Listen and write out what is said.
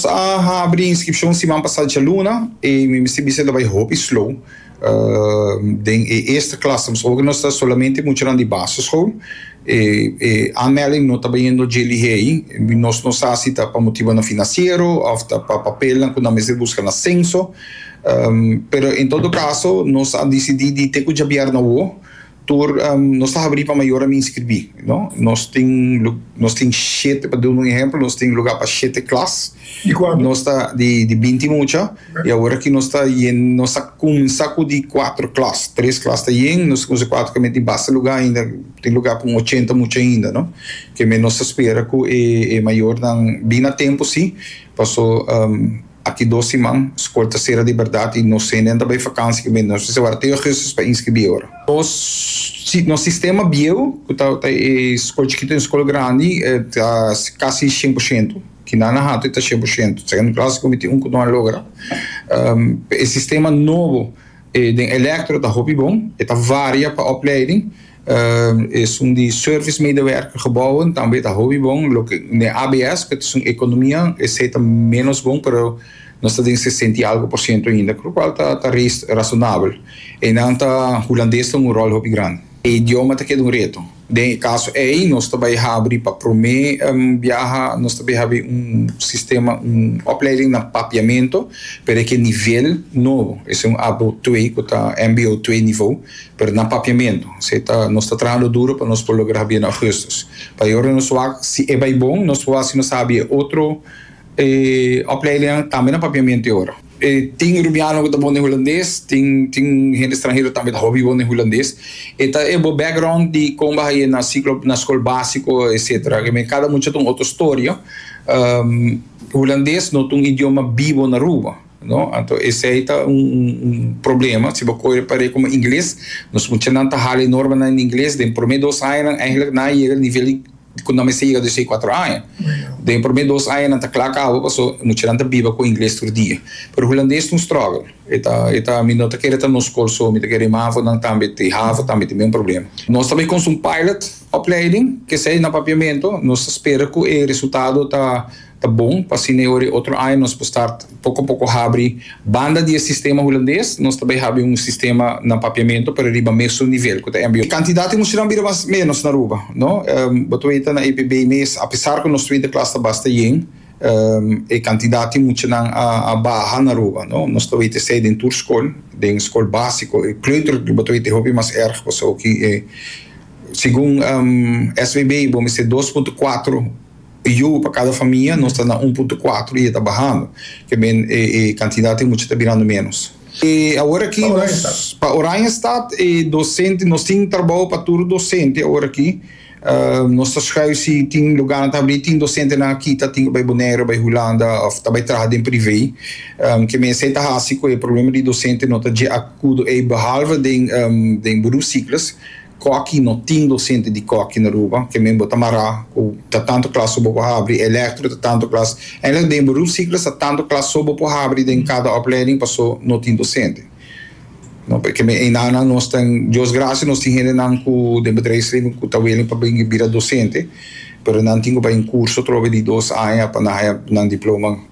Sa habri inscripcion siman pasa djaluna y mi mester bisa ta bay hopi slow. Den e eerste klassen pasobra cu nos ta solamente muchanan di basisschool e e aanmelding no ta bayendo dje lihei. Nos no sa si ta pa motibonan financiero of ta pa papelnan cu nan mester busca na censo. Pero en todo caso nos a dicidi di te cu djabier na woo. Tur nos ta habrí pa mayor a mi inskribí. Nos tin nos tin shete, pa duna un ehemplo, nos tin lugá pa shete klas. Di kuantu? Nos ta di di binti mucha i awor aki nos ta yen nos ta kuminsá ku di kuatro klas. Tres klas ta yen, nos ta kuminsá kuatro kemé tin basta lugá ainda, tin lugá pa un ochenta mucha ainda, no. Kemé nos ta spera ku e e mayornan bini a tempu sí, paso Aki dos siman, skol ta sera di bèrdat i nos senen ta bai fakansi ku mi. Nos mester wak te ougùstus pa inskribí ora. Nos nos sistema bieu, ku ta ta e skol chikitu en skol grandi, ta kasi shen por shento. Kina nan hatu e ta shen por shento. Segundo klas ku mi tin un ku no a logra. E sistema nobo den Elektro ta hopi bon. E ta varia pa opleiding. Es un di service medewerker gebouwen, tambe ta hopi bon. Loke den ABS, ku ta esun ekonomia, esei ta ménos bon, pero nos ta den sesenta i algu por siento ainda, ku lo kual ta rasonabel. Einan ta, hulandes ta un ròl hopi grandi. E idioma ta keda un reto. Den e kaso ei nos ta bai habri pa promé biaha, nos ta bai habri un sistema, un opleiding na Papiamento, pero e ke nivel nobo. Esei un abo twee ku ta mbo twee nivo. pero na papiamentu. Esei ta, nos ta trahando duro pa nos por logra habia na Augustus. Pa e ora nos wak, si e bai bon, nos por hasi nos habia e otro opleidingan tambe na papiamentu e ora. Tin rubiano ku ta bon den hulandes, tin tin hende stranhero tambe ta hopi bon den hulandes. E ta e bo background di kon bo a haña na siklo na skol básiko etsetera. Ke men kada mucha ta un otro storia. Hulandes no ta un idioma bibo na Aruba. No, anto esei ta un un problema. Si bo koe e par'é komo ingles, nos muchanan ta hala e normanan den ingles. Den promé dos añanan eigenlik nan a yega e nivel di ku nan mester yega dos i kuater aña. Den e promé dos añanan ta kla kaba paso e muchanan ta biba ku ingles tur dia. Pero hulandes ta un struggle. E ta e ta mi no ta kere ta nos skol so, mi ta kere e mavo-nan tambe, e havo tambe tin mesun problema. Nos ta bai konsa un pilot opleiding, k'esei na papiamentu. Nos ta spera ku e resultado ta. Ta bon pa asina e ora e otro aña nos por start poco poco habri banda di e sistema Hulandes, nos ta bay habi un sistema na papiamento pero riba mesun nivel cu ta mbo. Cantidad di muchanan bira mas menos na Aruba, no. Bo ta weta na e primer mes a pesar cu nos twinter klas ta basta yen, e cantidad di muchanan a baha na Aruba, no. Nos ta weta esey den tur scol, den scol basico, e kleuter bo ta weta e hopi mas erg pasobra cu e segun SVB bo mester dos punto cuatro. Yugo pa cada famia nos ta na un punto cuatro y e ta bahando. Ke men e e cantidad di mucha ta birando menos. E awor aki nos pa Oranjestad e docente nos tin trabao pa tur docente awor aki. Nos ta schuif si tin lugarnan ta habri. Tin docentenan aki ta tin cu bay Bonaire, bay Hulanda of ta bay traha den prive. Ke men esey ta haci cu e problema di docente no ta dje acudo ey behalve den den Boedoeufcyclus. Koki no tin dosente di koki na Aruba, ke men bo ta mará ku ta tantu klas so bo por habri, elektro ta tantu klas. Eindelijk den bo rufsikles ta tantu klas so bo por habri den kada oplèding pasó no tin dosente. No por ke men einanan nos tan Dios grasia nos tin hendenan ku den bedrijfsleven ku ta willing pa bini bira dosente pero nan tin ku bai un kurso atrobe di dos aña pa nan haya nan diploma.